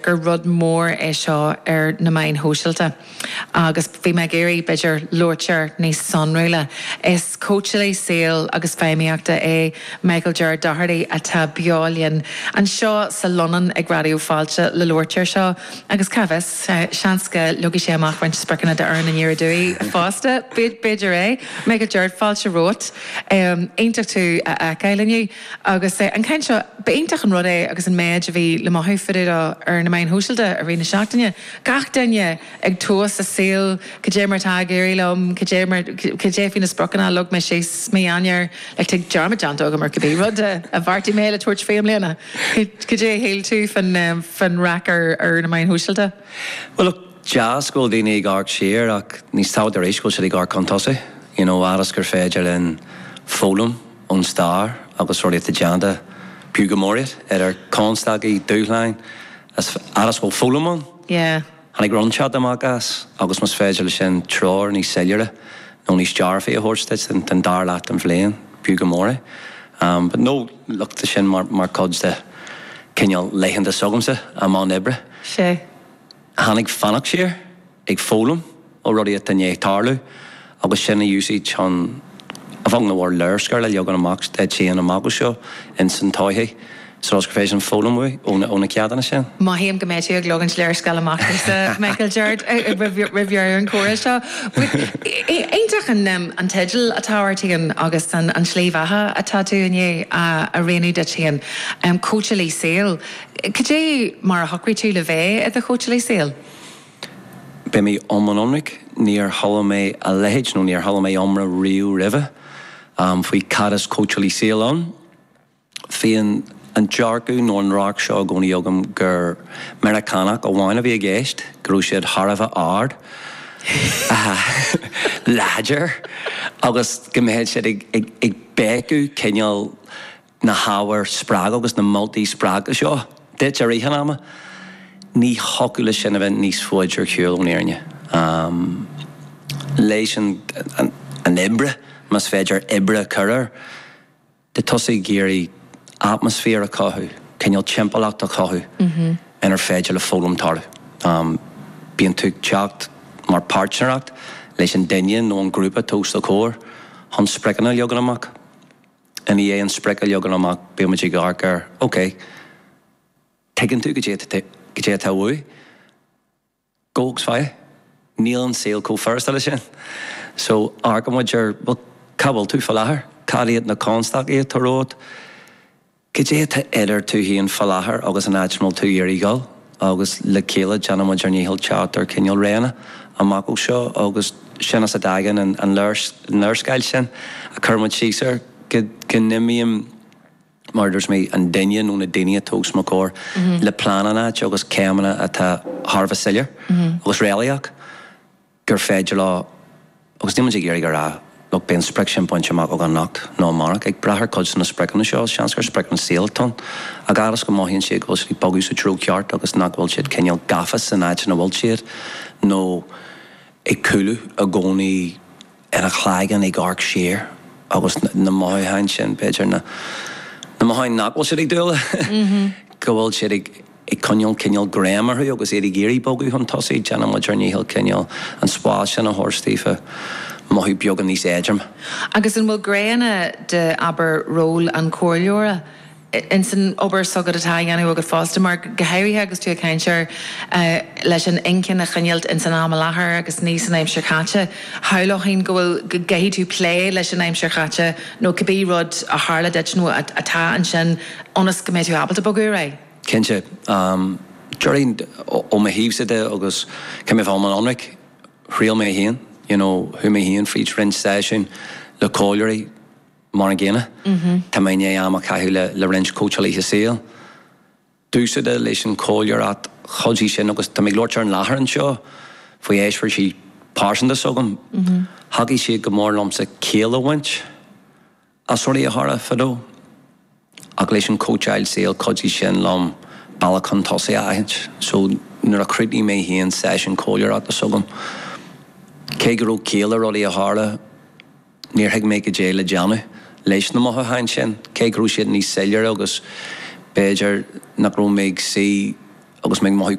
gur rud mór é seo ar na meáin shóisialta agus bhí mé ag iarraidh, b'fhéidir, labhairt air níos sonrúla. Is cóitseálaí saoil agus feidhmíochta é Michael Ger Doherty atá beo linn anseo sa lann ag Raidió Fáilte le labhairt air seo agus cá bhfios, seans go leagfaidh sé amach roinnt spriocanna d'Fhoireann Aniar Aduaidh fosta, b'fhéidir é. Michael Ger, fáilte romhat. Iontach tú a fheiceáil inniu. Agus an chaint seo, ba iontach an rud é agus an méid a bhí le maíomh faoi dtaobh de ar na meáin shóisialta i rith na seachtaine, gach duine ag tomhas a saoil, cad é mar atá ag éirí liom, cad é mar, cad é faoi na spriocanna a leag mé síos mí Eanáir, like tá dearmad déanta agam ar cibé rud a bheartaigh mé le tabhairt faoi i mbliana. Cad é a shíl tú fán raic ar na meáin shóisialta? Bhuel, look, deas go bhfuil daoine ag amharc siar ach níos tábhachtaí arís go bhfuil siad ag amharc chun tosaigh, you know, fhad is gur féidir linn foghlaim ón stair agus rudaí atá déanta, b'fhiú go mór iad, idir constaicí, dúshláin, is fhad is go bhfuil foghlaim ann. Tháinig rud inteacht amach as agus más féidir leis sin treoir níos soiléire nó níos dearfaí a thabhairt duit don dara leath den bhliain, b'fhiú go mór é. But no, look, tá sin mar chuid de chineál laethanta s'agamsa i mbun oibre. Sea. Tá ag amharc siar. ag foghlaim ó rudaí atá i ndiaidh tarlú agus sin a úsáid chun an fhoghlaim i bhur léarscáil a leagan amach den am go seo ins an todhchaí so is gur féidir an foghlaim uaidh ó na ó na ceachtanna sin. Mothaím go mbeidh tú ag leagaint léarscáil amach domhsa, Michael Ger, roimh dheireadh an chomhrá seo. Bhuel, iontach an teideal atá ort féin agus an tslí bheatha atá tú i ndiaidh a rianú duit féin, Cóitseálaí Saoil. Cad é mar a shocraigh tú le bheith i do chóitseálaí saoil? Beidh mé iomlán ionraic, níor chuala mé a leithéid nó níor chuala mé iomrá riamh roimhe faoi cad is cóitseálaí saoil ann. Bhí an dearcadh nó an radharc seo i gcónaí agam gur Meiriceánaigh amháin a bhí i gceist, go raibh siad thar a bheith ard, láidir agus go mbeadh siad ag béiceadh cineál. na hábhair spreagúla agus na moltaí spreagúla seo duit i rith an ama, ní thiocfadh leis sin a bheith níos faide ar shiúl ón fhírinne. Leis an obair, más féidir obair a chur air, de thosaigh ag iarraidh atmaisféar a chothú, cineál timpeallacht a chothú inar féidir le foghlaim tarlú. Bíonn tú ag teacht mar páirtnéireacht leis an duine nó an grúpa atá os do chomhair chun spriocanna a leagan amach. I ndiaidh an sprioc a leagan amach bíonn muid ag amharc ar, OK, tuigeann tú cad é atá uait? Go hiondúil, níl an saol chomh furasta leis sin. So, amharcann muid ar, bhuel, cá bhfuil tú faoi láthair? Cad iad na constaicí atá romhat? Cad é atá idir tú féin faoi láthair agus an áit a bhfuil tú ag iarraidh dhul? agus le chéile déanaimid ár ndícheall teacht ar chineál rian amach ó seo agus sin as a dtagann an léarscáil sin a chuir muid síos air go n-imíonn mar a dúirt mé an duine nó na daoine atá os mo chomhair le plean in áit agus céimeanna atá thar a bheith soiléir agus réalaíoch. gur féidir leo, agus níl muid ag iarraidh a rá go mbeidh an sprioc sin bainte amach againn anocht nó amárach, ag brath ar chuid de na spriocanna seo, is seans gur spriocanna saoil atá ann, a fhad is go mothaíonn siad go bhfuil siad ag bogadh sa treo ceart agus nach bhfuil siad cineál gafa san áit ina bhfuil siad nó ag cúlú i gcónaí ina gcloigeann ag amharc siar agus na mothúcháin sin, b'fhéidir, na mothúcháin nach bhfuil siad ag dúil go bhfuil siad ag. ag coinneáil cineál greim orthu agus iad ag iarraidh bogadh chun tosaigh, déanann muid ár ndícheall cineál an spás sin a thabhairt daofa mothú beagán níos éadroime. Agus an bhfuil gné ann de, abair, ról an chomhairleora in san obair s'agat, atá á dhéanamh agat fosta, mar go háirithe agus tú ag caint ar leis an inchinn a choinneáilt in san am i láthair agus ní san aimsir chaite, shamhlófainn go bhfuil, go gcaithfidh tú plé leis an aimsir chaite nó cibé rud a tharla duit nó atá ansin ionas go mbeidh tú ábalta bogadh ar aghaidh? Cinnte. Déarfainn ó mo thaobhsa de agus caithfidh mé a bheith an-ionraic, thriail mé féin, you know, chuaigh mé féin fríd roinnt seisiúin le comhairleoirí mar an gcéanna. Tá mé i ndiaidh am a chaitheamh le roinnt cóitseálaithe saoil. Domhsa de leis an chomhairleoireacht chuidigh sin agus tá mé ag labhairt ar an láthair anseo faoi eispéiris pearsanta s'agam. Thacaigh siad go mór liomsa ciall a bhaint. As rudaí a tharla fadó, ach leis an cóitseáil saoil chuidigh sin liom bealach chun tosaigh a aithint. So, nuair a chríochnaigh mé féin seisiún comhairleoireachta s'agam, cé go raibh ciall le rudaí a tharla, níor thuig mé caidé le déanamh leis na mothúcháin sin, cé go raibh siad níos soiléire agus b'fhéidir nach raibh mé ag suí agus mé ag mothú